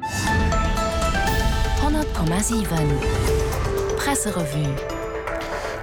100,7 Presserevue.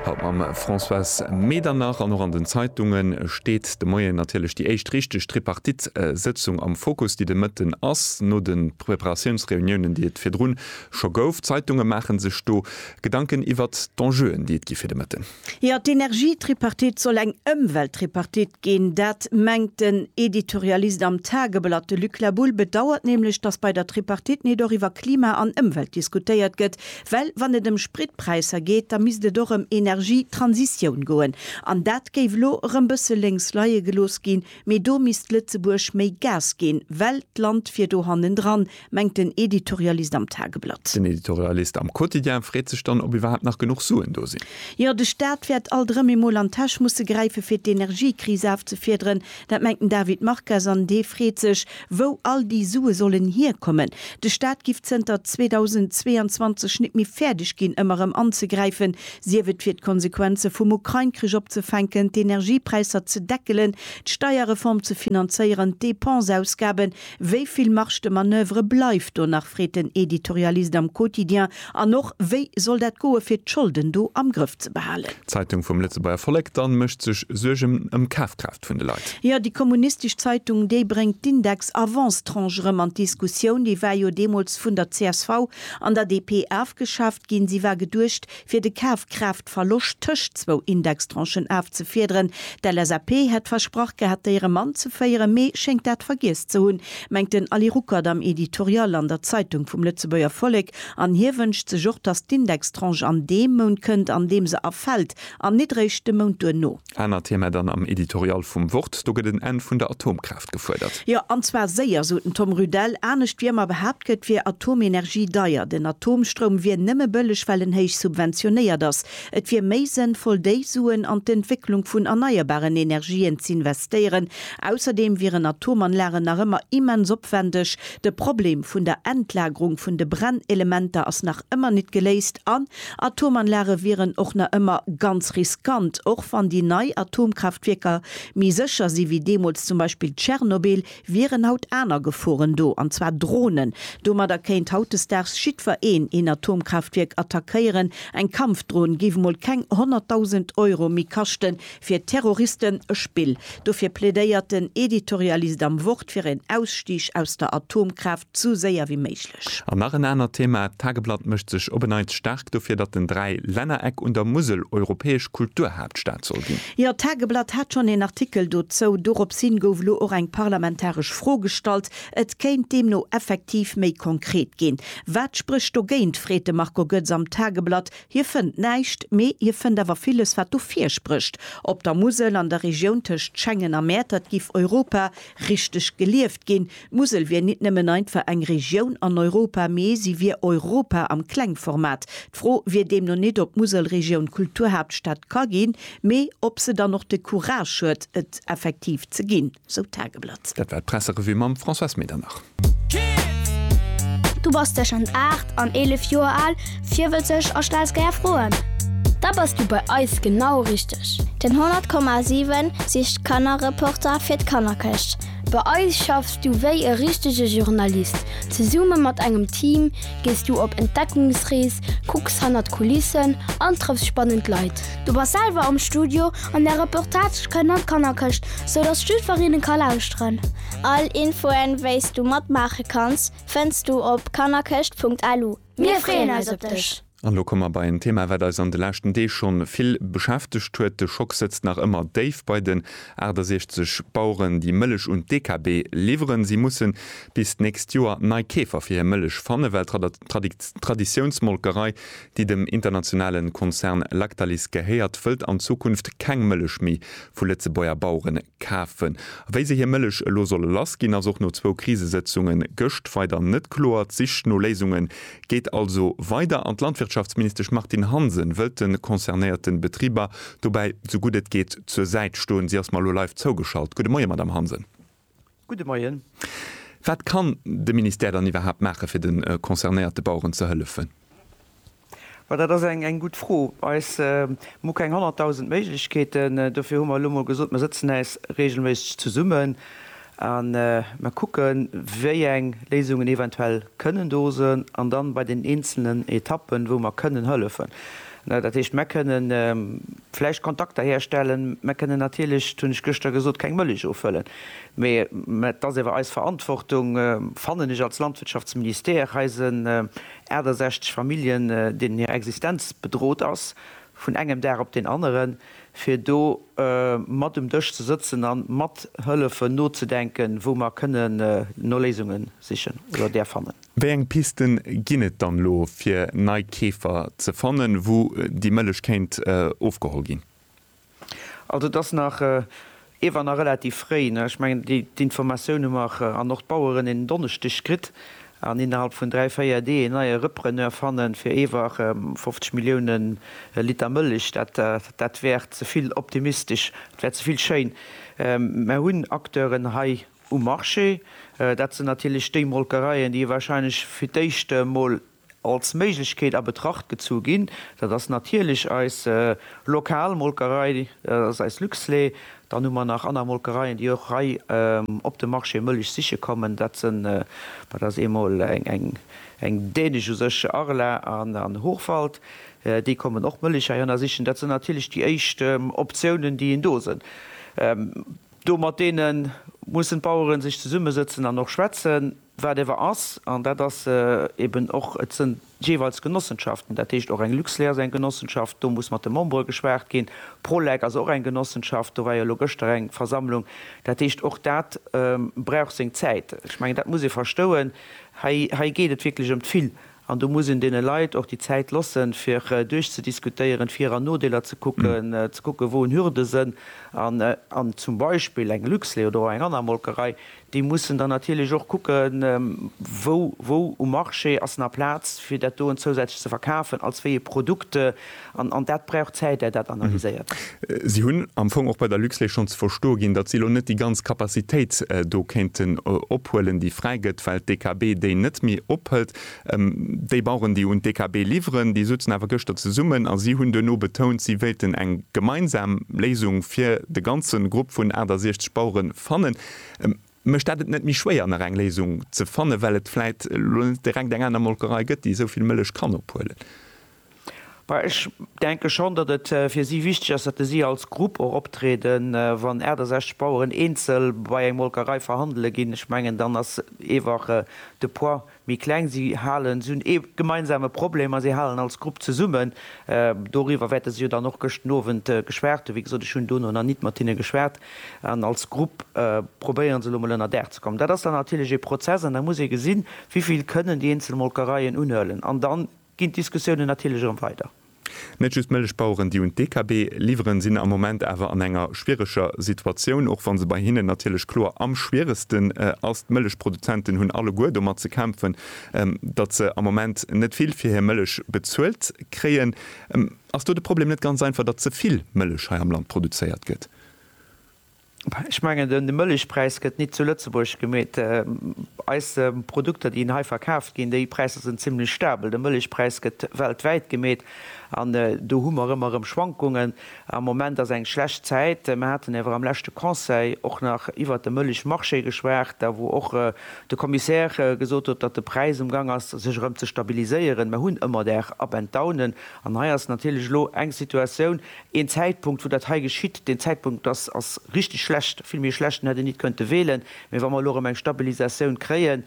Haut mam Françoise Medernach an och an den Zeitunge steet de Moien natierlech déi éischt richteg Tripartite-Sëtzung am Fokus, déi de Mëtten ass, no de Preparatiounsreuniounen, déi et virdrun scho gouf. D'Zeitunge maache sech do Gedanken iwwert d'Enjeuen, déi et gi fir de Mëtten. Jo, d'Energietripartite soll eng Ëmwelttripartite ginn. Dat mengt den Editorialist am Tageblatt. De Luc Labulle bedauert nämlech, datt bei der Tripartite nit och iwwer Klima an Ëmwelt diskutéiert gëtt. Well wann et ëm Spritpräisser geet, da misst et och ëm Energietransitioun goen. An dat géif elo erëm bësse lénks leie gelooss ginn. Mee do misst Lëtzebuerg méi Gas ginn, well d'Land wier do hannendran, Mengt den Editorialist am Tageblatt. Den Editorialist am Quotidien freet sech dann, ob iwwerhaapt nach genuch Suen do sinn. Jo, de Staat wäert alt erëm emol an d'Täsch musse gräife fir d'Energiekris afzefiederen. Dat mengt den David Marcas an dee freet sech, wou all déi Sue sollen hierkommen. De Staat giff zënter 2022 nit méi fäerdeg ginn, ëmmer erëm anzegräifen, sief et fir d'Konsequenze vum Ukrain-Krich opzefänken, d'Energiepräisser ze deckelen, d'Steierreform ze finanzéieren, d'Depense-Ausgaben Wéi vill Marge de manoeuvre bleift do nach, freet den Editorialist am Quotidien, an och, wéi soll dat goe fir d'Scholden do am Grëff ze behalen? D'Zeitung vum Lëtzebuerger Vollek dann mécht sech Suergen ëm d'Kafkraaft vun de Leit. Jo, déi kommunistesch Zeitung, déi bréngt d'Index Avances-tranches erëm an d'Diskussioun. Déi war jo deemools vun der csv an der DP afgeschaaft ginn. Si war geduecht fir de Kafkraaftdeckel de Verloscht tëscht zwou Indextranchen afzefiederen. D'LSAP hätt versprach gehat, déi erëm anzeféieren, mee schéngt dat vergiess ze hunn, mengt den Ali Ruckert am Editorial an der Zeitung vum Lëtzebuerger Vollek. An hie wënscht sech och, datt d'Indextranche an deem Mount kënnt, an deem se erfält, an nit réischt de Mount duerno. Anert Thema dann am Editorial vum Wort, Do gëtt en Enn vun der Atomkraaft gefuerdert. Jo, an zwar séier, sot den Tom Rüdell. Anescht wéi ëmmer behaapt gëtt, wier Atomenergie deier. Den Atomstroum wier nëmme bëlleg, well en héich subventionéiert ass. Et wier méi sënnvoll, déi Suen an d'Entwécklung vun erneierbaren Energien z'investéieren. Ausserdeem wieren Atomanlagen nach ëmmer immens opwendeg. De Problem vun der Endlagerung vun de Brennelementer ass nach ëmmer nit geléist an Atomanlage wieren och nach ëmmer ganz riskant, och wann déi nei Atomkraaftwierker méi sécher si wéi deemools zum Beispill Tschernobyl, wieren haut aner Geforen do, an zwar Dronen. Domadder kéint hautdesdaags jiddwer een een Atomkraaftwierk attackéieren. Eng Kampfdron géif emol keng 100.000 Euro méi kaschten, Fir Terroristen e Spill. Dofir plädéiert den Editorialist am Wort fir een Ausstig aus der Atomkraaft esou séier wéi méiglech. An nach en anert Thema, D'Tageblatt mécht sech op en Neits staark dofir, datt den Dräilännereck un der Musel europäesch Kulturhaaptstad soll ginn. Jo, d'Tageblatt hat schonn een Artikel dozou. Dorops hin gouf elo och eng parlamentaresch Fro gestallt. Et kéint deemno effektiv méi konkret ginn. Wat sprécht dogéint, freet de Marco Goetz am Tageblatt. Hie fënnt näischt, mee hie fënnt awer villes, wat do virsprécht. Op der Musel, an der Regioun tëscht Schengen a Mäertert giff Europa richteg gelieft ginn. D'Musel wier nit nëmmen einfach eng Regioun an Europa, mee si wier Europa am Klengformat. D'Fro wier deemno nit, ob d'Muselregioun Kulturhaaptstad ka ginn, mee ob se dann och de Courage huet, et effektiv ze ginn. sou d'Tageblatt. Dat war d'Presserevue mam Françoise Medernach. Du bass tëschent 8 an 11 Joer al, virwëtzeg a stells gär Froen? Da bass du bei eis genau richteg! Den 100,7 sicht d'Kannerreporter fir d'Kannerkëscht. Bei eis schaffs du wéi e richtege Journalist. Zesumme mat engem Team gees du op Entdeckungsrees, kucks hannert d'Kulissen an trëffs spannend Leit. Du bass selwer am Studio an der Reportage kënnt an d'Kannerkëscht, sou datt d'Schüferinnen ka lauschteren. All Infoen, wéi's du matmaache kanns, fënns du op kannerkëscht.lu. Mir freeën eis op dech! An elo komme mer bei en Thema, wat eis an de leschten Deeg schonn vill beschäftegt huet. De Schock sëtzt nach ëmmer déif bei den 68 Baueren, déi Mëllech un d'DKB liwweren. Si mussen bis d'nächst Joer nei Keefer fir hir Mëllech fannen, well D'Traditiounsmolkerei, déi dem internationale Konzern Lactalis gehéiert, wëllt an Zukunft keng Mëllech méi vu Lëtzebuerger Bauere kafen. A wéi se hir Mëllech elo solle lass ginn, ass och no zwou Krisesëtzunge gëscht weider net kloer. D'Sich no Léisunge geet also weider an d'Landwirtschaftsministesch Martine Hansen wëllt de concernéierte Betriber dobäi sou gutt et geet zur Säit stoen. Si ass mer elo live zougeschalt. Gudde Moie, Madamm Hansen. Gudde Moien. Wat kann de Ministère dann iwwerhaapt maache fir de concernéierte Baueren ze hëllefen? Ma dat ass eng gutt Fro. Eis Mir hu keng 100.000 Méiglechkeeten. Dofir hu mer elo mol gesot, mer sëtzen äis reegelméisseg zesummen a mer kucken, wéi eng Léisungen eventuell kënnen do sinn an dann bei den eenzelnen Etappen, wou mer kënnen hëllefen. Dat heescht, mer kënnen. Vläicht Kontakter herstellen. Mer kënnen natierlech, dat hunn ech gëschter gesot, keng Mëllech offëllen. Mee et ass ewer eis Verantwortung, fannen ech, als Landwirtschaftsministère eisen 68 Familljen, deenen hir Existenz bedrot ass vun engem Dag op deen aneren, fir do mat um Dësch ze sëtzen a mathëllefen nozedenken, wou mer kënnen no Léisunge sichen oder där fannen. Wéi eng Pisten ginn et dann elo fir nei Keefer ze fannen, wou déi Mëllech kéint ofgeholl ginn? Also et ass nach ewer nach relativ fréi. Ech mengen d'Informatioun hu mer an och d'Baueren en Donneschdeg kritt an innerhalb vun dräi, véier Deeg en neie Repreneur fannen fir ewer 50 Millioune Liter Mëllech. Dat wär ze vill optimistesch, dat wär ze vill schéin. Mer hunn Acteuren hei Um Marché, dat sinn natierlech déi Molkereien, déi wahrscheinlech fir d'éischt emol als Méiglechkeet a Betracht gezu ginn. Dat ass natierlech eis lokal Molkerei, dat ass eis Luxlait. Dann hu mer nach aner Molkereien, déi och hei op de Marché Mëllech siche kommen. Dat sinn, dat ass eemol eng dänesch, u sech Arla an Hochwald, déi kommen och Mëllech heihanner sichen. Dat sinn natierlech déi éischt Optiounen, déi een do sinn. Do mat deenen mussen d'Baueren sech zesummesëtzen an och schwätzen, wat ewer ass. An dat ass eben och, et sënn jeeweils Genossenschaften, dat heescht och eng Luxlait ass eng Genossenschaft, do muss mat de Membere geschwaacht ginn. Prolec ass och eng Genossenschaft, do war jo elo gëschter eng Versammlung. Dat heescht, och dat brauch seng Zäit. Ech mengen, dat muss ee verstouen. Hei, hei geet et wierklech ëm d'Vill An do muss een deene Leit och déi Zäit lossen, fir duerchzediskutéieren, d'Vir an Nodeeler ze kucken, ze kucken, wou en Hürde sënn. An zum Beispill eng Luxlait oder och eng aner Molkerei, déi mussen dann natierlech och kucken, wou um Marché ass nach Plaz, fir dat doen zousätzlech ze verkafen, als wéi e Produkt, An dat brauch Zäit, är dat analyséiert. Si hunn am Fong och bei der Luxlait schonn ze verstoe ginn, datt si elo net déi ganz Capacitéit do kéinten ophuelen, déi fräi gëtt, well d'DKB déi net méi ophëlt. Déi Baueren, déi un d'DKB liwweren, déi souzen awer gëschter zesummen a si hunn duerno betount, si wéilten eng gemeinsam Léisung fir de ganze Grupp vun 68 Bauere fannen. Mécht dat et net méi schwéier nach eng Léisung ze fannen, well et vläit elo net direkt eng aner Molkerei gëtt, déi esou vill Mëllech kann ophuelen? Bah, ech denke schonn, datt et fir si wichteg ass, datt si als Grupp och optrieden. Wann 68 Baueren eenzel bei eng Molkerei verhandele ginn, ech mengen, dann ass eewach de Poids méi kleng si halen, si hunn ee gemeinsame Problem a si halen als Grupp zesummen. Doriwwer wäerte se jo dann och gëschten Owend geschwat hunn. Wéi gesot, ech hunn dono nach nit mat hinne geschwat. An als Grupp probéiere se elo mol ënnerdaach ze kommen. Dat ass dann natierlech ee Prozess an da muss ee gesinn, wéi vill kënnen déi eenzel Molkereien unhuelen an dann ginn d'Diskussiounen natierlech erëm weider. Net just d'Mëllechbaueren, déi un d'DKB liwweren, sinn am Moment awer an enger schwiereger Situatioun, och wa se bei hinnen natierlech kloer am schwieregsten ass. D'Mëllechproduzenten hunn alleguer domat ze kämpfen, datt se am Moment net vill fir hir Mëllech bezuelt kréien. Ass do de Problem net ganz einfach, datt ze vill Mëllech hei am Land produzéiert gëtt? Ech mengen, de Mëllechpräis gëtt nit zu Lëtzebuerg gemeet. Eis Produkter, déi hei verkaaft ginn, déi Präisser sinn zimlech stabel. De Mëllechpräis gëtt weltwäit gemeet an do hu mer ëmmer erëm Schwankungen. Am Moment ass eng schlecht Zäit. Mer haten awer am leschte Conseil och nach iwwert de Mëllechmarché geschwat, da wou och de Commissaire gesot huet, datt de Präis um Gang ass, sech erëm ze stabiliséieren. Mer hunn ëmmer Där Up and Downen an hei ass natierlech elo eng Situatioun, Een Zäitpunkt, wou dat hei geschitt, deen Zäitpunkt ass, ass richtig schlecht, vill méi schlecht, en hätt een nit kënnte wéhlen. Mee wa mer elo erëm eng Stabilisatioun kréien,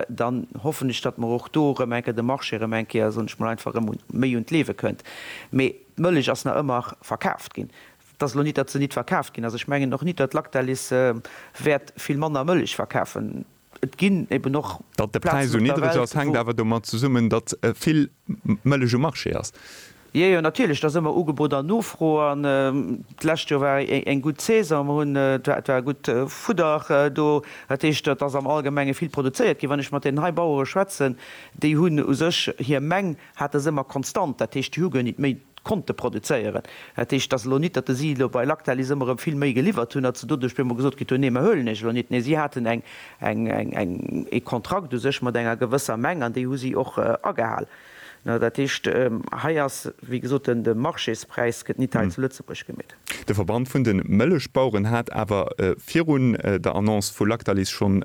dann hoffen ech, datt mer och do erëm eng Kéier de Marché erëm eng Kéier, soen ech mol einfach, erëm méi un d'Liewe kënnt. Mee d'Mëllech ass nach ëmmer verkaaft ginn. Et ass elo nit, datt se nit verkaaft ginn ass. Ech mengen och nit, datt Lactalis wäert vill manner Mëllech verkafen. Et ginn eben och. Datt de Präis esou niddreg ass, hänkt awer domat zesummen, datt vill Mëllech um Marché ass. Jo, jo, natierlech, et ass ëmmer Ugebot an Nofro. An d'lescht Joer war eng gutt Saison. Mer hunn, et war, et war gutt Fudder do. Dat heescht, et ass am Allgemenge vill produzéiert ginn. Wann ech mat deenen hei Bauere schwätzen, déi hunn u sech hir Meng. hate se ëmmer konstant, dat heescht déi hu guer nit méi konnte produzéieren. Dat heescht, et ass elo nit, datt se elo bei Lactalis ëmmer erëm vill méi geliwwert hunn, datt se doduerch op eemol gesot kritt hunn, nee mir huelen iech elo nit. Nee, si haten eng, eng, eng, eng, ee Kontrakt u sech mat enger gewësser Meng an déi hu si och agehal. Dat heescht, hei ass, wéi gesot, de Marchéspräis gëtt nit hei zu Lëtzebuerg gemeet. De Verband vun de Mëllechbaueren hat awer virun der Annonce vu Lactalis schonn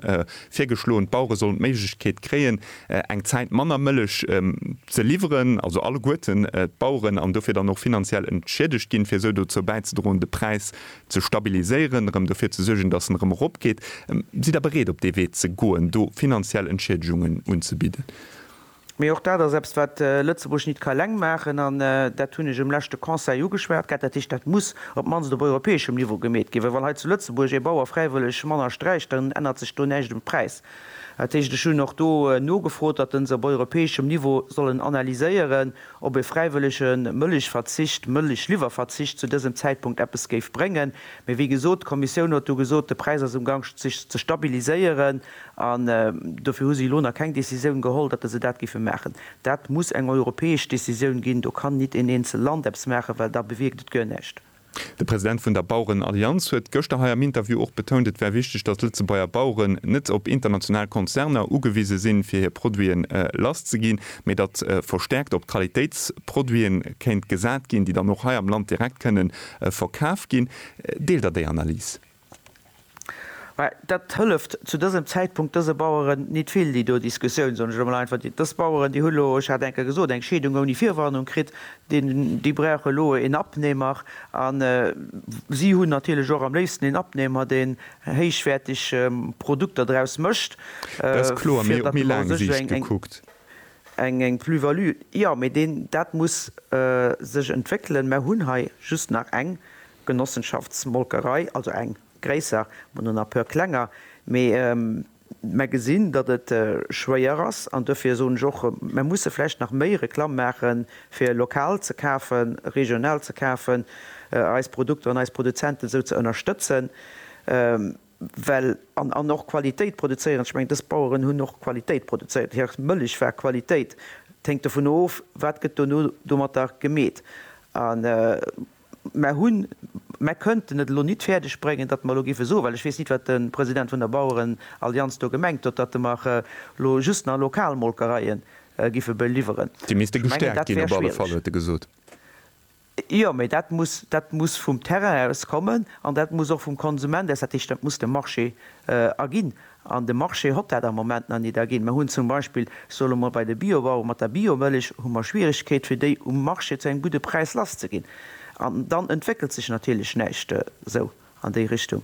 virgeschloen, d'Bauere sollen d'Méiglechkeet kréien, eng Zäit manner Mëllech ze liwweren, also alleguerten d'Baueren, an dofir dann och finanziell entschiedegt ginn, fir esou dozou bäizedroen, de Präis ze stabiliséieren, erëm dofir ze suergen, dass en erëm eropgeet. Sidd Der bereet, op dee Wee ze goen, do finanziell Entschiedegungen unzebidden? Mee och dat ass eppes, wat Lëtzebuerg nit ka eleng maachen. An dat hunn ech um leschte Conseil ugeschwat gehat. Dat heescht, dat muss op d'mannst op europäeschem Niveau gemeet ginn. Well wann hei zu Lëtzebuerg ee Bauer fräiwëlleg manner sträicht, dann ännert sech do näischt um Präis. Dat heescht, ech hunn och do nogefrot, datt en se op europäeschem Niveau sollen analyséieren, ob e fräiwëllege Mëllechverzicht, Mëllechliwwerverzicht zu dësem Zäitpunkt eppes géif bréngen. Mee wéi gesot, d'Kommissioun huet do gesot, de Präis ass um Gank sech ze stabiliséieren. An dofir hu si elo nach keng Décisioun geholl, datt se dat géife maachen. Dat muss eng europäesch Décisioun ginn. Do kann nit een eenzel Land eppes maachen, well da bewierkt et guer näischt. De President vun der Bauerenallianz huet gëschter hei am Interview och betount, et wär wichteg, datt d'Lëtzebuerger Baueren net op international Konzerner ugewise sinn, fir hir Produite lass ze ginn, mee datt verstäerkt op Qualitéitsproduite kéint gesat ginn, déi dann och hei am Land direkt kënne verkaf ginn. Deelt Der déi Analys? Mä dat hëlleft zu dësem Zäitpunkt dëse Baueren nit vill, déi do Diskussioun, soen ech elo mol einfach. Dës Baueren, déi hu lo, ech hat eng Kéier gesot, eng Scheedung ouni Virwarnung kritt, déi brauche lo een Abnehmer. A si hunn natierlech och am léifsten een Abnehmer, deen héichwäerteg Produkter draus mécht, fir datt mer u sech eng Plus-value, jo, mä dat muss sech entwéckelen. Mer hunn hei just nach eng Genossenschaftsmolkerei, also eng gréisser, mol no nach puer klenger, mee mer gesinn, datt et schwéier ass an dofir soen ech och, mer musse vläicht nach méi Reklamm maache fir lokal ze kafen, regional ze kafen, eis Produkter an eis Produzenten esou ze ënnerstëtzen, well, an och Qualitéit produzéieren, ech mengen dës Baueren hunn och Qualitéit produzéiert, hir Mëllech war Qualitéit, et hänkt dovun of, wat gëtt dono domatter gemeet. Mer hunn, mer kënnten et elo nit fäerdeg bréngen, datt mer elo géife soen, well ech weess nit, wat de President vun der Bauerenallianz do gemengt huet, datt mer elo just nach lokal Molkereie géife beliwweren. Déi misste gestäerkt ginn op alle Fall, huet e gesot. Jo, mä dat muss, dat muss vum Terrain aus kommen an dat muss och vum Konsument aus, dat heescht, dat muss de Marché erginn. An de Marché hott dat am Moment nach nit erginn. Mer hunn zum Beispill, soe lo mol, bei de Biobauere mat der Biomëllech hu mer Schwierigkeet fir déi um Marché zu engem gudde Präis lass ze ginn. An dann entwéckelt sech natierlech näischt esou an déi Richtung.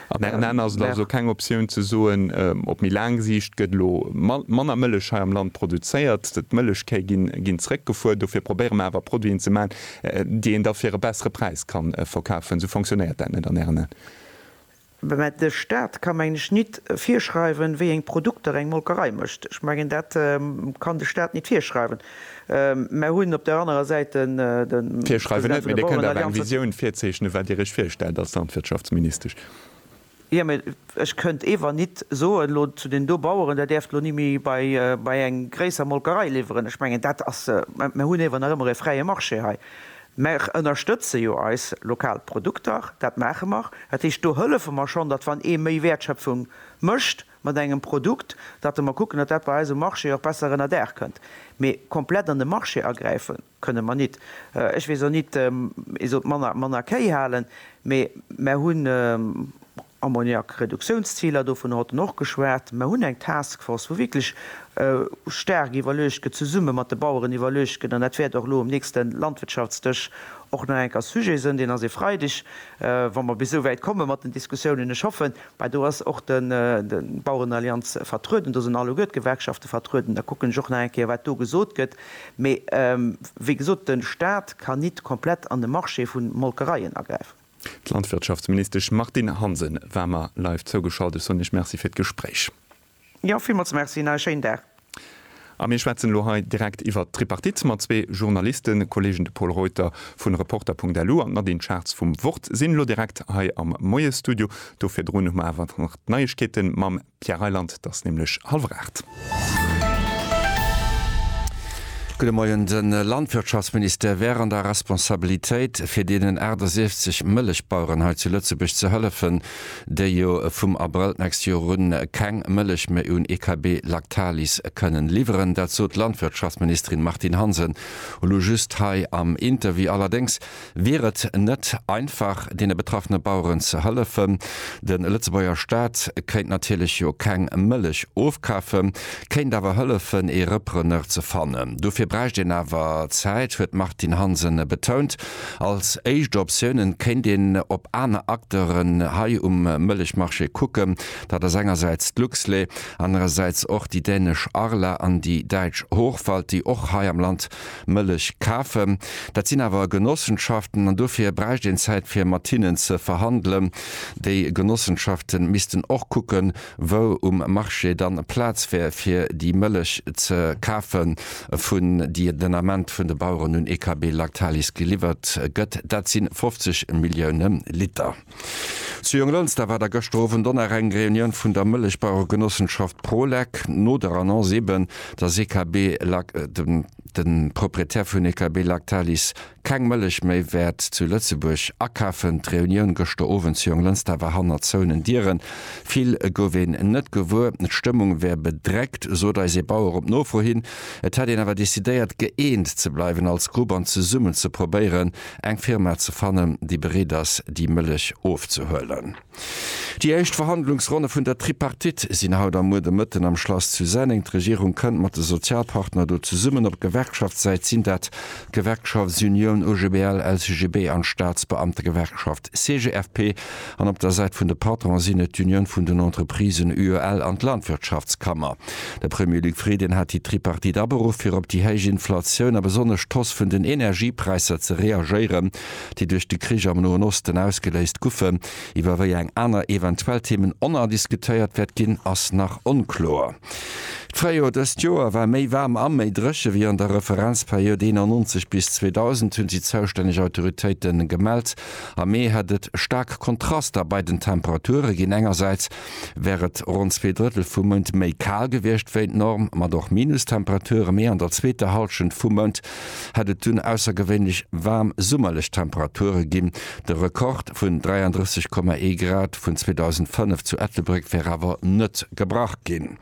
An ären Aen ass et also keng Optioun ze soen, op méi laang Siicht gëtt elo manner Mëllech hei am Land produzéiert, d'Mëllechkéi ginn zréckgefuer, dofir probéiere mer awer Produiten ze maachen, déi een da fir e bessere Präis ka verkafen. Esou fonctionnéiert dat net an ären Aen? Mä de Stat ka mengen ech nit virschreiwen, wéieng Produkter eng Molkerei mécht. Ech mengen dat kann de Stat nit virschreiwen. Mer hunn op der anerer Säit den President vun der Bauerenallianz. Jo, mä ech kënnt ewer nit soen elo zu deenen do Baueren, der däerft elo ni méi bei eng gréisser Molkerei liwweren. Ech mengen dat ass, mer hunn ewer nach ëmmer e fräie Marché hei. Mer ënnerstëtze jo eis lokal Produkter, dat maache mer. Dat heescht, do hëllefe mer schonn, datt wann ee méi Wäertschöpfung mécht mat engem Produkt, datt mer kucken, datt dat bei eis um Marché och besser ënner Daach kënnt. Mee komplett an de Marché agräife kënne mer nit. Ech weess och nit, ee sollt manner Kéi halen, mee mer hunn. Ammoniak-Reduktiounsziler, dovunner hat en och geschwat. Mer hunn eng Taskforce, wou wierklech staark iwwerluecht gëtt, zesumme mat de Baueren iwwerluecht gëtt, an dat wäert och elo um nächste Landwirtschaftsdësch och nach eng Kéier Sujet sënn, deen ass e Freideg, wa mer bis esou wäit komme mat den Diskussiounen. Ech hoffen, mä do ass och de Bauerenallianz vertrueden, do sinn alleguer d'Gewerkschafte vertrueden, da kucken ech och nach eng Kéier, wat do gesot gëtt. Mee wéi gesot, de Stat kann nit komplett an de Marché vu Molkereien agräifen. D'Landwirtschaftsministesch Martine Hansen war mer live zougeschalt. Ech soen Iech Merci fir d'Gespréich. Jo, villmools Merci an e schéinen Dag. A mir schwätzen elo hei direkt iwwert d'Tripartite mat zwee Journalistenkolleegen. De Pol Reuter vu Reporter.lu an d'Nadine Schartz vum Wort sinn elo direkt hei am Moiesstudio. Do virdrun hu mer awer nach d'Neiegkeete mam. Pierre Reyland, Et ass nämlech hallwer aacht. Gudde Moien. De Landwirtschaftsministère wär an der Responsabilitéit, fir deenen 68 Mëllechbaueren hei zu Lëtzebuerg ze hëllefen, déi jo vum Abrëll d'nächst Joer un keng Mëllech méi un EKB Lactalis kënnen liwweren. Dat sot d'Landwirtschaftsministerin Martine Hansen elo just hei am Interview. Allerdéngs Wier et net einfach, deene betraffene Baueren ze hëllefen? De Lëtzebuerger Staat kéint natierlech jo keng Mëllech ofkafen, kéint awer hëllefen, ee Repreneur ze fannen. Dofir bräicht een awer Zäit, huet d'Martine Hansen betount. Als éischt Optioune kéint een op aner Acteuren hei um Mëllechmarché kucken. Dat ass engersäits d'Luxlait, anerersäits och déi dänesch Arla an déi däitsch Hochwald, déi och hei am Land Mëllech kafen. Dat sinn awer Genossenschaften an dofir bräicht een Zäit fir mat hinnen ze verhandelen. Déi Genossenschaften missten och kucken, wou um Marché dann Plaz wär fir déi Mëllech ze kafen, vun déi den Ament vun de Baueren un EKB Lactalis geliwwert gëtt. Dat sinn 50 Millioune Liter. Zu Jonglënster war da gëschter Owend och nach eng Reunioun vun der Mëllechbaueregenossenschaft Prolec. No der Annonce eben, dass EKB Lac, de Proprietär vun EKB Lactalis, keng Mëllech méi wäert zu Lëtzebuerg akafen, d'Reunioun gëschter Owend zu Jonglënster war hannert zouenen Dieren. Vill gouf een net gewuer, d'Stëmmung wär bedreckt, sot eis ee Bauer op Nofro hin. Et hätt een awer decidéiert, gëeent ze bleiwen als Grupp an zesummen ze probéieren, Eng Firma ze fannen, déi bereet ass, déi Mëllech ofzehuelen. Déi éischt Verhandlungsronne vun der Tripartite sinn haut a muer de Mëtten am Schlass zu Senneng. D'Regierung kënnt mat de Sozialpartner do zesummen. Op Gewerkschaftssäit sinn dat d'Gewerkschaftsunioun OGBL, LCGB an d'Staatsbeamtegewerkschaft. d'CGFP an op der Säit vun de Patronen sinn et d'Union vun den Entreprisen, UEL, an d'Landwirtschaftskammer. De Premier Luc Frieden hat déi Tripartite aberuff fir op déi héich Inflatioun a besonnesch d'Hoss vun den Energiepräisser ze reagéieren, déi duerch de Krich am Noen Osten ausgeléist guffen. Iwwer wéi eng aner eventuell Themen oner diskutéiert wäert ginn, ass nach onkloer. D'Fréijor dëst Joer war méi waarm a méi dréche wéi an der Referenzperiod 91 bis 2000, hunn déi zoustänneg Autoritéite gemellt. Am Mee hätt et staark Kontraster bei den Temperature ginn, engersäits wär et ronn zwee Drëttel vum Mount méi kal gewiescht wéi d'Norm, mat och Minustemperature, mee an der zweeter Hallschent vum Mount hätt et dunn aussergewéinlech waarm summerlech Temperature ginn. De Rekord vun 33,1 Grad vun 2005 zu Ettelbréck wär awer net gebrach ginn.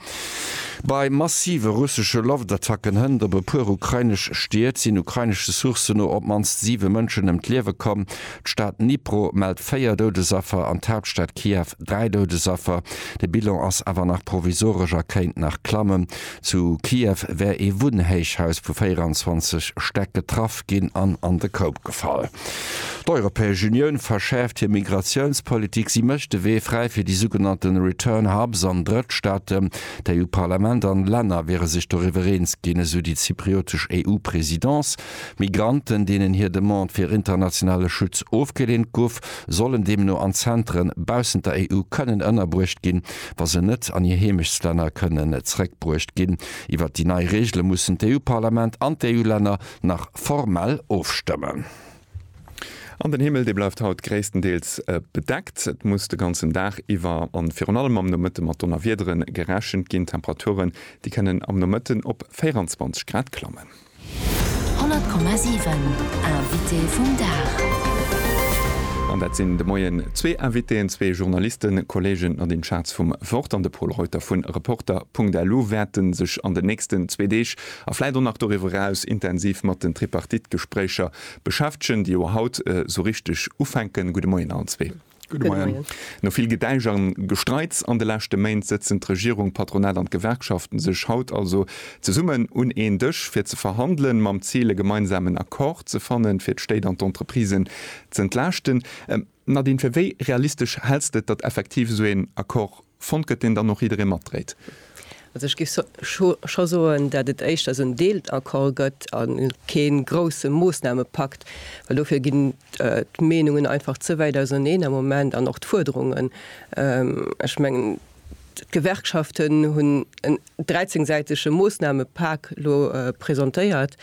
Bei massive russesche Loftattacken hënt op e puer ukrainesch Stied sinn ukrainesche Sourcen no op d'mannst siwe Mënschen ëm d'Liewe komm. D'Stad Dnipro mellt véier Doudesaffer an d'Haaptstad Kiew dräi Doudesaffer. De Bilan ass awer nach provisoresch a kéint nach klammen. Zu Kiew wär ee Wunnhéichhaus vu 24 Stäck getraff ginn an an de Koup gefall. D'Europäesch Unioun verschäerft hir Migratiounspolitik. Si mécht de Wee fräi fir déi sougenannte Return Hubs an Drëttstaaten. D'EU-Parlament an Länner wiere sech doriwwer eens ginn, esou déi zypriotesch EU-Presidence. Migranten, deenen hir Demande fir internationale Schutz ofgeleent gouf, sollen deemno an Zentren baussent der EU kënnen ënnerbruecht ginn, wa se net an hir Heemechtslänner kënnen zeréckbruecht ginn. Iwwert déi nei Reegele mussen d'EU-Parlament an d'EU-Länner nach formell ofstëmmen. An den Himmel, dee bleift haut gréisstendeels bedeckt. Et muss de ganzen Dag iwwer a virun allem am Nomëtte mat Donnerwiedere gerechent ginn. D'Temperature, déi kënnen am Nomëtten op 24 Grad klammen. 100,7 Invité vum Dag. An dat sinn de Moien zwee Invitéen, zwee Journalisten, Kollegen Nadine Schatz vum Wort an de Pol Reuter vu Reporter.lu wäerte sech an den nächsten zwee Deeg a vläit och nach doriwwer eraus intensiv mat den Tripartite-Gespréicher beschäftegen, déi jo haut esou richteg ufänken. Gudde Moien allen zwee. Gudde Moien. No vill Gedäisch a Gestreits an de leschte Méint sëtzen d'Regierung, d'Patronat an d'Gewerkschaften sech haut also zesummen un een Dësch fir ze verhandelen, mam Zil e gemeinsamen Accord ze fannen, fir d'Stéit an d'Entreprisen z'entlaaschten. Nadine, fir wéi realistesch häls de et, datt effektiv esou een Accord Fonnt gëtt, deen dann och jidderee matdréit. Also ech géif scho soen, datt et éischter esou en Deelaccord gëtt a kee grousse Moossnamepakt, well dofir ginn d'Meenungen einfach ze wäit auserneen am Moment an och d'Fuerderungen. Ech mengen, d'Gewerkschaften hunn en dräizéngsäitege Moossnamepak elo presentéiert,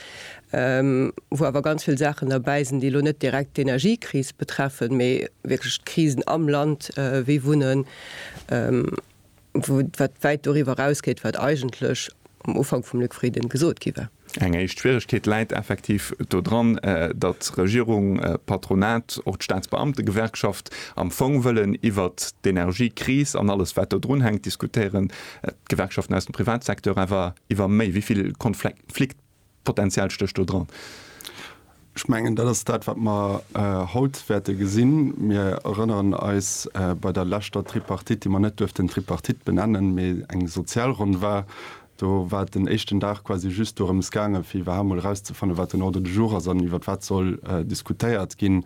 wou awer ganz vill Saachen derbäi sinn, déi elo net direkt d'Energiekris betreffen, mee wierklech d'Krisen am Land wéi Wunnen, wat wäit doriwwer erausgeet, wat eigentlech am Ufank vum Luc Frieden gesot gi war. Eng éischt Schwieregkeet läit effektiv do dran, datt Regierung, Patronat, och d'Staatsbeamtegewerkschaft am Fong wëllen iwwert d'Energiekris an alles wat do drun hänkt diskutéieren, d'Gewerkschaften aus dem Privatsecteur awer iwwer méi. Wéi vill Konfliktpotenzial stécht do dran? Ech mengen, dat ass dat, wat mer haut wäerte gesinn. Mir erënneren eis, bei der leschter Tripartite, déi mer net duerften Tripartite benennen, mä eng Sozialronn war, do war et den éischten Dag quasi just dorëms gaangen, fir iwwerhaapt mol erauszefannen, wat den Ordre du jour ass an iwwert wat soll diskutéiert ginn.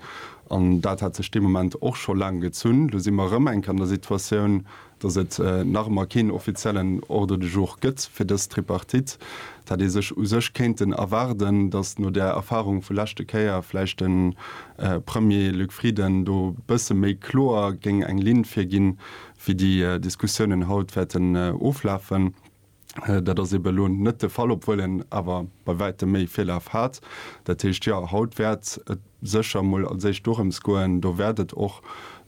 An dat hat sech dee Moment och scho laang gezunn. Lo si mer erëm eng Kéier an der Situatioun, datt et nach ëmmer keen offiziellen Ordre du jour gëtt fir dës Tripartite, dat ee sech u sech kéinten erwaarden, datt no där Erfahrung vu leschte Kéier vläicht de Premier Luc Frieden do e bësse méi kloer géing eng Linn virginn, wéi déi Diskussiounen haut wäerten oflafen. Dat ass eebe elo net de Fall, obwuel een awer bei wäitem méi Virlaf hat. Dat heescht, jo, haut wäert et sécher mol als éischt dorëms goen, do wäert et och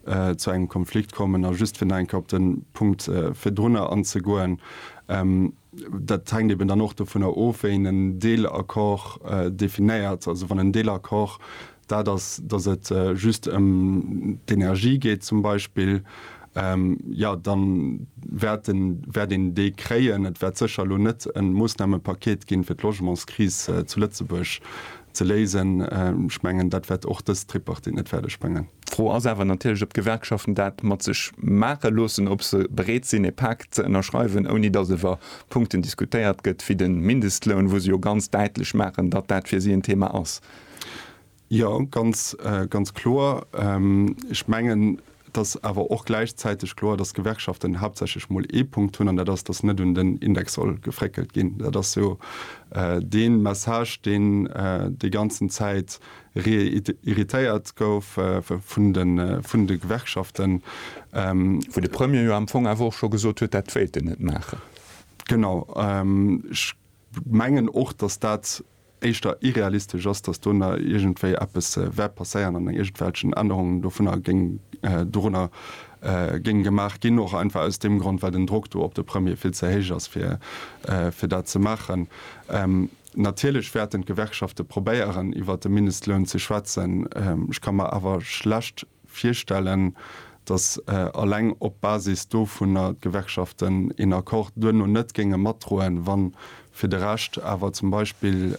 zu engem Konflikt kommen. A just fir nach eng Kéier op de Punkt virdrunner anzegoen, Dat hänkt eeben dann och dovunner of, wéi een en Deelaccord definéiert. Also wann en Deelaccord dat ass, datt et just ëm d'Energie geet zum Beispill, jo da wäert een déi kréien. Et wäert sécher elo net e Moossnamepaket ginn, fir d'Logementskris zu Lëtzebuerg ze léisen. Ech mengen, dat wäert och dës Tripartite net fäerdeg bréngen. D'Fro ass awer natierlech, ob d'Gewerkschaften dat mat sech maache loossen, ob se bereet sinn, e Pak ze ënnerschreiwen, ouni datt iwwer Punkten diskutéiert gëtt wéi de Mindestloun, wou se jo ganz däitlech maachen, datt dat fir si en Thema ass. Jo, ganz, ganz kloer. Ech mengen, et ass awer och gläichzäiteg kloer, dass d'Gewerkschaften haaptsächlech mol ee Punkt hunn, an dat ass, dass net un den Index soll gefréckelt ginn. Dat ass jo dee Message, deen déi ganzen Zäit réitéiert gouf vun de, vun de Gewerkschaften. Wou de Premier jo am Fong awer och scho gesot huet, dat wéilt en net maachen. Genau. Ech mengen och, dass dat éischter irrealistesch ass, dass do na iergendwéi eppes wäert passéieren an iergendwelchen Ännerungen dovunner géing, dorunner géingen gemaach ginn, och einfach aus deem Grond, well den Drock do op de Premier vill ze héich ass, fir, fir dat ze maachen. Natierlech wäerten d'Gewerkschafte probéieren, iwwert de Mindestloun ze schwätzen. Ech ka mer awer schlecht virstellen, datt alleng op Basis dovunner d'Gewerkschaften een Accord duerno net géinge matdroen, wa fir de Rescht awer zum Beispill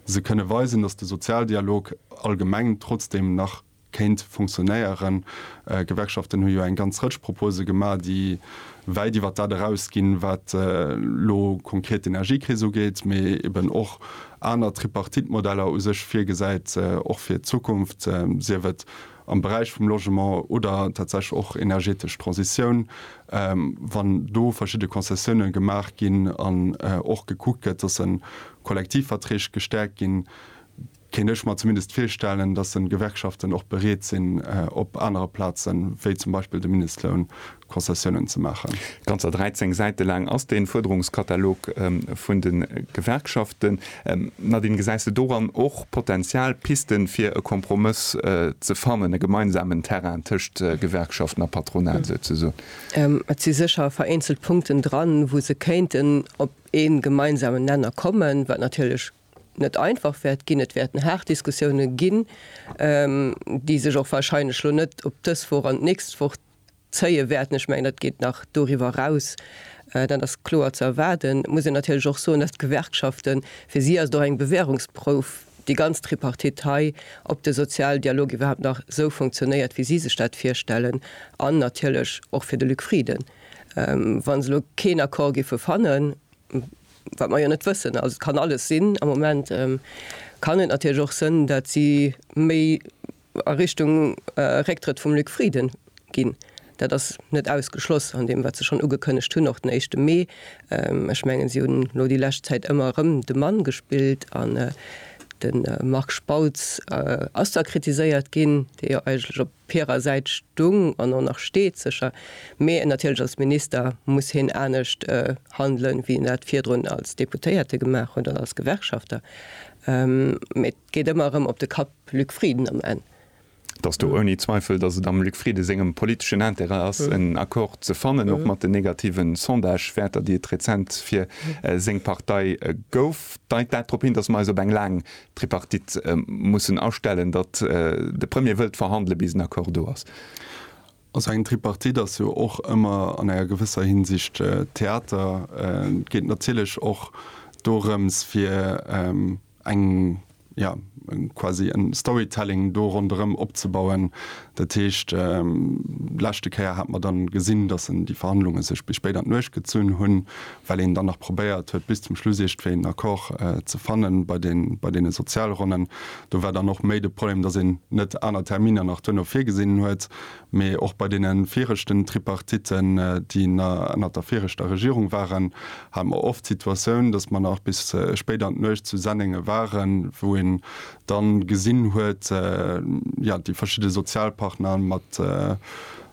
se kënne weisen, datt de Sozialdialog allgemeng trotzdeem nach kéint funktionéieren. D'Gewerkschaften hu jo eng ganz Rëtsch Propose gemaach, déi wäit iwwert dat eraus ginn, wat elo konkret d'Energiekris ugeet, mee eben och aner Tripartite-Modeller u sech virgesäit, och fir d'Zukunft, sief et am Beräich vum Logement oder tatsächlech och energetesch Transitioun, wann do verschidde Konzessioune gemaach ginn an och gekuckt gëtt, dass se Kollektivverträg gestäerkt ginn. kéint ech mer zumindest virstellen, dass en d'Gewerkschaften och bereet sinn, op anere Plazen, wéi zum Beispill de Mindestloun, Konzessiounen ze maachen. Ganzer 13 Säite laang ass dee Fuerderungskatalog vun de Gewerkschaften. Nadine, gesäis de doran och Potenzial, Pisten, fir e Kompromëss ze fannen, e gemeinsamen Terrain tëscht Gewerkschaften a Patronat souzesoen? Et si sécher vereenzelt Punkten dran, wou se kéinten op ee gemeinsamen Nenner kommen, wat natierlech net einfach wäert ginn. Et wäerten haart Diskussioune ginn, déi sech och wahrscheinlech lo net op dës Woch an d'nächst Woch zéie wäerten. Ech mengen, dat geet nach doriwwer eraus, dat ass kloer ze erwaarden. Et muss een natierlech och soen, datt d'Gewerkschaften, fir si ass et och eng Bewährungsprouf, déi ganz Tripartite hei, ob de Sozialdialog iwwerhaapt nach esou funktionéiert, wéi si sech dat virstellen, an natierlech och fir de Luc Frieden, wa se elo keen Accord géife fannen, wat mer jo net wëssen, also et kann alles sinn, am Moment kann et natierlech och sënn, datt si méi a Richtung Récktrëtt vum Luc Frieden ginn. Dat ass net ausgeschloss an deem, wat se schonn ugekënnegt hunn, och den éischte Mee. Ech mengen, si hunn elo déi lescht Zäit ëmmer erëm de Mann gespillt an de Marc Spautz ass da kritiséiert ginn, dee jo eigentlech op Op hirer Säit stung an och nach steet sécher, mee natierlech als Minister muss hien anescht handelen, wéi en dat virdrun als Deputéierte gemaach huet oder als Gewerkschafter. Mee et geet ëmmer erëm op de Kapp Luc Frieden am Enn. Et ass do ouni Zweifel, datt et am Luc Frieden sengem politeschen Intérêt ass, en Accord ze fannen, och mat den negative Sondagewäerter, déi et rezent fir seng Partei gouf. Deit dat drop hin, datt mer eis op eng laang D'Tripartite mussen astellen, datt de Premier wëllt verhandele bis en Accord do ass. Also eng Tripartite ass jo och ëmmer an enger gewësser Hinsicht Theater. Et geet natierlech och dorëms fir eng, jo quasi en Storytelling do ronderëm opzebauen. Dat heescht, d'leschte Kéier hat mer dann gesinn, datt en déi Verhandlunge sech bis spéit an d'Nuecht gezunn hunn, well een dann nach probéiert huet bis zum Schluss iergtwéi en Accord ze fanne bei deene Sozialronnen. Do war dann och méi de Problem, datt een net aner Terminer nach duerno virgesinn huet, mee och bei deene viregten Tripartitten, déi ënnert der viregter Regierung waren, hat mer oft d'Situatioun, datt mer nach bis spéit an d'Nuecht zu Sennenge waren, wou een da gesinn huet, jo, déi verschidde Sozialpartner mat.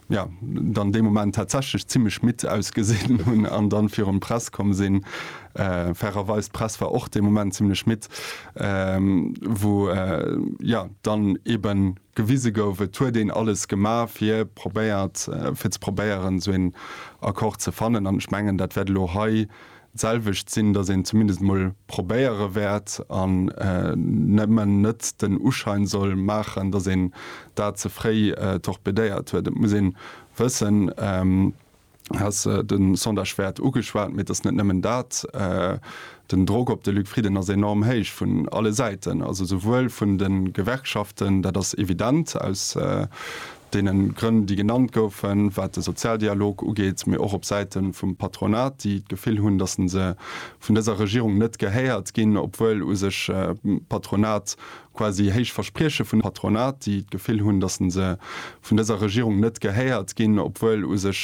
jo, dann dee Moment tatsächlech zimmlech midd ausgesinn hunn an dann virun d'Press komm sinn. Fairerweis, d'Press war och dee Moment zimmlech midd, wou, jo, dann eben gewise gouf, et huet een alles gemaach, fir probéiert, fir ze probéieren, esou een Accord ze fannen. An ech mengen, dat wäert elo hei D'selwecht sinn, datt een zumindest emol probéiere wäert an nëmmen net den Uschein soll maachen, datt een dat ze fréi torpedéiert huet. Et muss een wëssen, du has de Sondage wäert ugeschwat, mee et ass net nëmmen dat, den Drock op de Luc Frieden ass enorm héich vun alle Säiten, also souwuel vun de Gewerkschaften, dat ass evident aus deene Grënn, déi genannt goufen, wat de Sozialdialog ugeet, mee och op Säite vum Patronat, déi d'Gefill hunn, datt se vun dëser Regierung net gehéiert ginn, obwuel u sech d'Patronat quasi héich Versprieche vun Patronat, déi d'Gefill hunn, datt se vun dëser Regierung net gehéiert ginn, obwuel u sech.